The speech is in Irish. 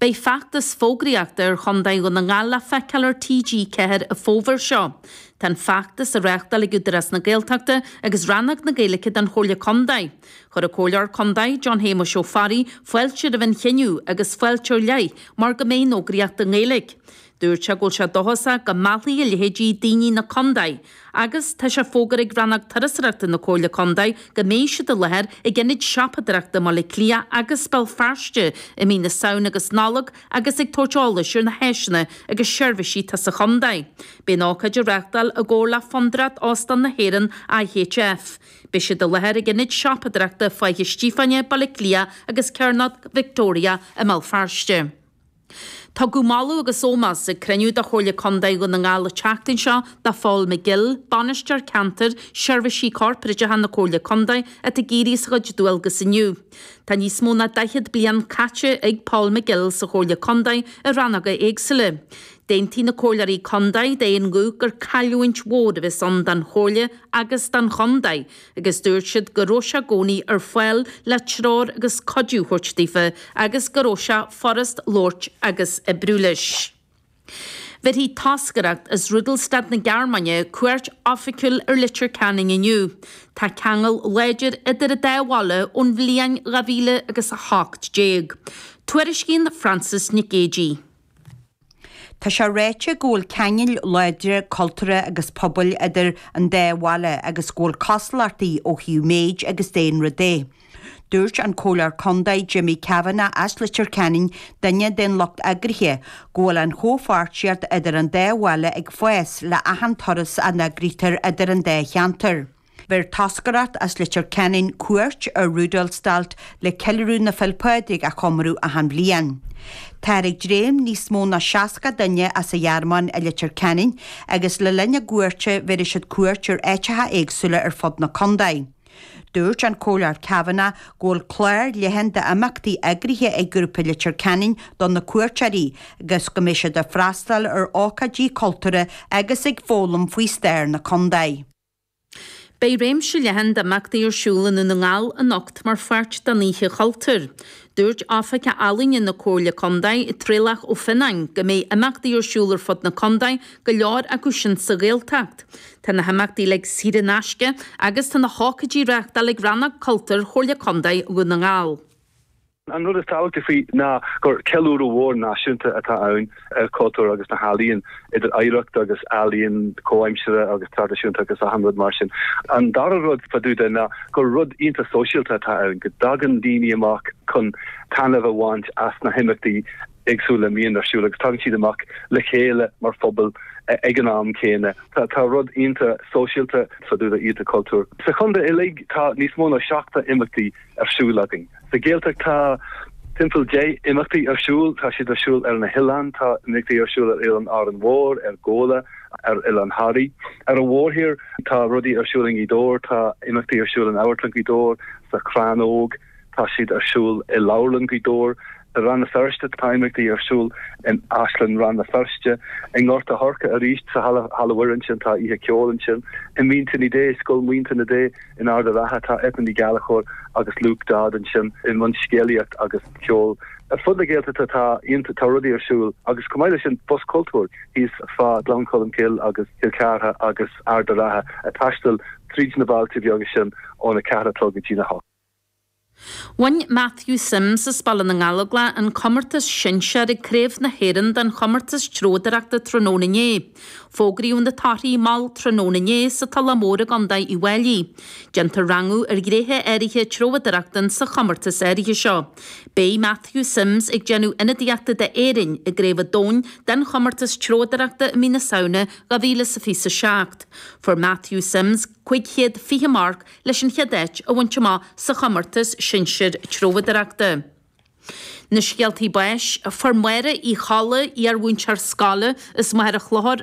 Beidh feachtas fógraíochta ar Chontae Dhún na nGall le feiceáil ar TG4 an fómhar seo. Tá an feachtas á reáchtáil ag Údarás na Gaeltachta agus Rannóg na Gaeilge den Chomhairle Contae. Chuir an Comhairleoir Contae, John Shéamuis Ó Fearraigh, fáilte roimh an chinneadh agus fáilte ar leith mar go mbeidh an fhógraíocht i nGaeilge. Dúirt sé go bhfuil sé dóchasach go meallfaidh a leithéidí daoine chun na contae agus tá sé fógartha ag Rannóg Turasóireachta na Comhairle Contae go mbeidh siad i láthair ag ionaid siopadóireachta i mBaile Átha Cliath agus Béal Feirste i mí na Samhna agus Nollag agus ag tabhairt eolais ar na háiseanna agus seirbhísí atá sa chontae. Beidh an ócáid á reáchtáil i gcomhar le Fondúireacht Óstáin na hÉireann, IHF. Beidh siad i láthair ag ionaid siopadóireachta Faiche Stiofáine, Baile Átha Cliath agus Cearnóg Victoria i mBéal Feirste. Tugadh moladh agus ómós ag cruinniú de Chomhairle Contae Dhún na nGall an tseachtain seo do Phól McGill, Bainisteoir Ceantair Seirbhísí Corparáideacha na Comhairle Contae atá ag éirí as a chuid dualgas inniu. Tá níos mó ná 40 bliain caite ag Pól McGill sa Chomhairle Contae i rannóga éagsúla. D'aontaigh na Comhairleoirí Contae d'aon ghuth gur cailliúint mhór a bheas ann don Chomhairle agus don Chontae agus dúirt siad go raibh sé gcónaí ar fáil le treoir agus cuidiú thabhairt daofa agus go raibh sé furast labhairt agus oibriú leis. Bhéarfaidh toscaireacht as Rudolstadt na Gearmáine cuairt oifigiúil ar Leitir Ceanainn inniu. Tá ceangal láidir idir an dá bhaile ón bhliain dhá mhíle agus a hocht déag. Tuairiscíonn Frances Nic Géadaigh. Tá sé ráite go bhfuil ceangail láidre cultúrtha agus pobail idir an dá bhaile agus go bhfuil cosúlachtaí ó thaobh méid agus daonra de. Dúirt an Comhairleoir Contae Jimmy Kavanagh as Leitir Ceanainn, duine den lucht eagraithe, go bhfuil an chomhpháirtíocht idir an dá bhaile ag fás le achan turas a eagraítear idir an dá cheantar. Bheir toscaireacht as Leitir Ceanainn cuairt ar Rudolstadt le ceiliúradh na Féile Pádraig a chomóradh achan bhliain. Táthar ag dréim le níos mó ná seasca duine as an Ghearmáin i Leitir Ceanainn agus le linn a gcuairte bhéarfaidh siad cuairt ar áiteacha éagsúla ar fud na contae. Dúirt an Comhairleoir Kavanagh go bhfuil clár leathan d'imeachtaí eagraithe ag grúpa Leitir Ceanainn do na cuairteoirí agus go mbeidh siad ag freastáil ar ócáidí cultúrtha agus ag foghlaim faoi stair na contae. Beidh réimse leathan d'imeachtaí ar siúl i nDún na nGall anocht mar pháirt den Oíche Chultúir. Dúirt Oifigeach Ealaíne na Comhairle Contae, Traolach Ó Fionnáin, go mbeidh imeachtaí ar siúl ar fud na contae, go leor acu sin sa Ghaeltacht. Tá na himeachtaí uilig saor in aisce agus tá na hócáidí á reáchtáil ag Rannóg Cultúir Chomhairle Contae Dhún na nGall. An rud is tábhachtaí faoi ná gur ceiliúradh mhór náisiúnta atá ann ar chultúr agus na healaíon, idir oidhreacht agus ealaíon comhaimseartha agus traidisiúnta agus achan rud mar sin. An dara rud fá dtaobh de ná gur rud iontach sóisialta atá ann, go dtagann daoine amach chun taitneamh a bhaint as na himeachtaí éagsúla a mbíonn ar siúl agus tagann siad amach le chéile mar phobal ag an am céanna. Tá rud iontach sóisialta fá dtaobh de Oíche Chultúir. Sa chontae uilig tá níos mó ná 70 imeachtaí. ar siúl againn. Sa Ghaeltacht tá timpeall deich imeachtaí ar siúl. Tá siad ar siúl ar na hoileáin. Tá imeachtaí ar siúl ar Oileán Árainn Mhór, ar Ghabhla, ar Oileán Thoraí. Ar an mhórthír tá rudaí ar siúl i nGaoth Dobhair. Tá imeachtaí ar siúl in Amharclann Ghaoth Dobhair, sa Chrannóg. Tá siad ar siúl i Leabharlann Ghaoth Dobhair. I Rann na Feirste tá imeachtaí ar siúl in Áislann Rann na Feirste, i nGort a' Choirce arís, sa Halla, Halla Mhuire ansin, tá oíche ceoil ansin, i Mín Tine Dé, Scoil Mhín Tine Dé in Ard a' Rátha, tá Eithne Ní Ghallchobhair agus Luke Dodd ansin i mbun scéalaíocht agus ceol. Ar fud na Gaeltachta tá ionta, tá rudaí ar siúl agus chomh maith le sin bus cultúir thíos fá Gleann Cholm Cill agus Cill Chartha agus Ard a' Rátha ag taisteal tríd na bailte bheaga sin óna ceathair a chlog go dtí na hocht. Bhain Matthew Simms as Baile na nGallóglach an comórtas sinsear ag Craobh na hÉireann den chomórtas treabhdóireachta tráthnóna inné. Fógraíodh na torthaí mall tráthnóna inné sa Tulach Mhór i gContae Uíbh Fháilí. Déantar rangú ar ghnéithe áirithe treabhdóireachta insa chomórtas áirithe seo. Beidh Matthew Simms ag déanamh ionadaíochta d'Éirinn i gCraobh an Domhain den chomórtas treabhdóireachta i mí na Samhna 2027. Fuair Matthew Simms cúig chéad fiche marc leis an chéad áit a bhaint amach sa chomórtas sinsir treabhdóireachta. Na scéaltaí báis, Fuair Máire Uí Cholla, iar-mhúinteoir scoile as Machaire Chlochair,